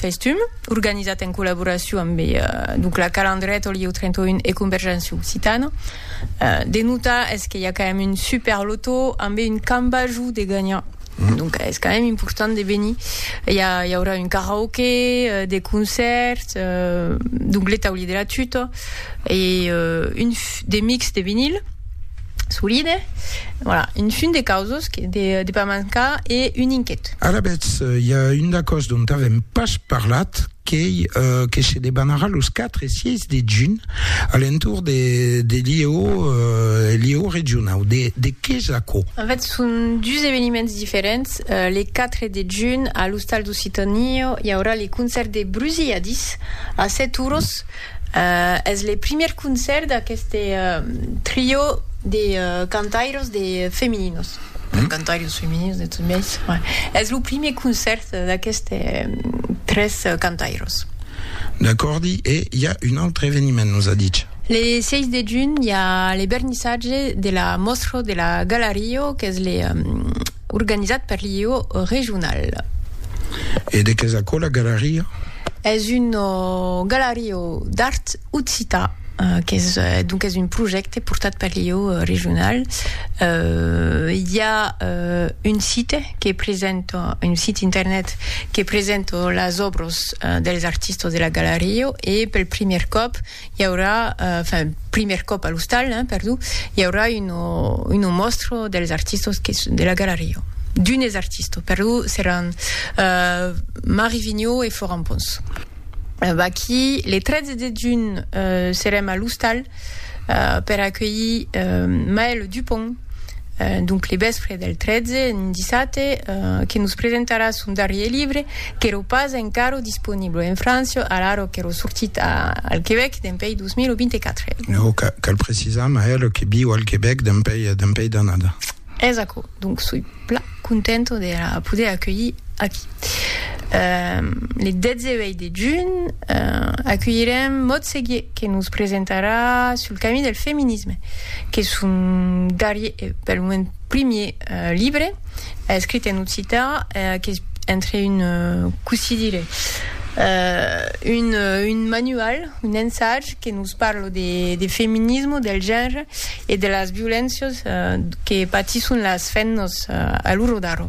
Festum, organizat en collaboracion amb Ducla Calandret, Olieu 31 e Convergència Occitana. De notar es que i a quand même un super lotó ambe un cambajou de gagnant. Donc es quand même important de venir. I a i aurà un karaoke, de concert, donc le taulí de la tuta e un de mix de vinil. Solide. Voilà, un fum de causos que de, de pas mancar e un inquet. Alavetz, i a un d'acòs dont avèm pas parlat, qu'ei uh, que se debanarà los 4 e 6 de junh a l'entorn de, de l'IEO, uh, l'IEO regionau. De, de qué es aquò? En fait, son dus eveniments diferents. Uh, le 4 de junh, a l'Ostal d'Occitània, i aurà le concèrt de Brusilladis a 7 oros, Es le primièr concèrt d'aqueste trio de cantairos de femininos, cantairos femininos de tot biais, es lo primièr concèrt d'aqueste tres cantairos. D'acòrdi, e i a un autre eveniment, nos a dich? Le 6 de junh i a le vernissatge de la mòstra de la Galario qu'es le organizat per l'IEO regional. E de qué es aquò la Galario? Es un galariu d'art occitan qu'es donc es un projècte portat per l'ieu regional. I a un site que presenta, un site internet que presenta las òbras dels artistas de la galariu e pel primièr còp I aurà, enfin, primièr còp a l'ostal, hein, perdó, i aurà uno, uno mòstro dels artistos que, de la galeria. D'unes artistos, perdó, seràn uh, Marie Vigneault e Florent Pons. Uh, vaquí, le 13 de junh uh, serem a l'ostal uh, per acuelhir uh, Maëlle Dupont, donc le vèspre del 13, un dissabte, que nos presentarà son darrier libre, qu'èro pas encara disponible en França, alara qu'èro sortit al Quebec dempèi 2024. Non, cal precisar, Maëlle, que viu al Quebec dempèi d'annada. Es aquò, donc soi. Pla contento de la poder aculhir aquí. Le 18 de junh aculhirem Maud Seguier que nos presentarà Sul camí del feminisme, qu'es son darrier e pel moment primier libre escrit en occità qu'es entre un, cossí dire, un manual, Un ensaj que nos parla de feminisme, del genre e de las violéncias que patisson las femnas a l'ora d'ara.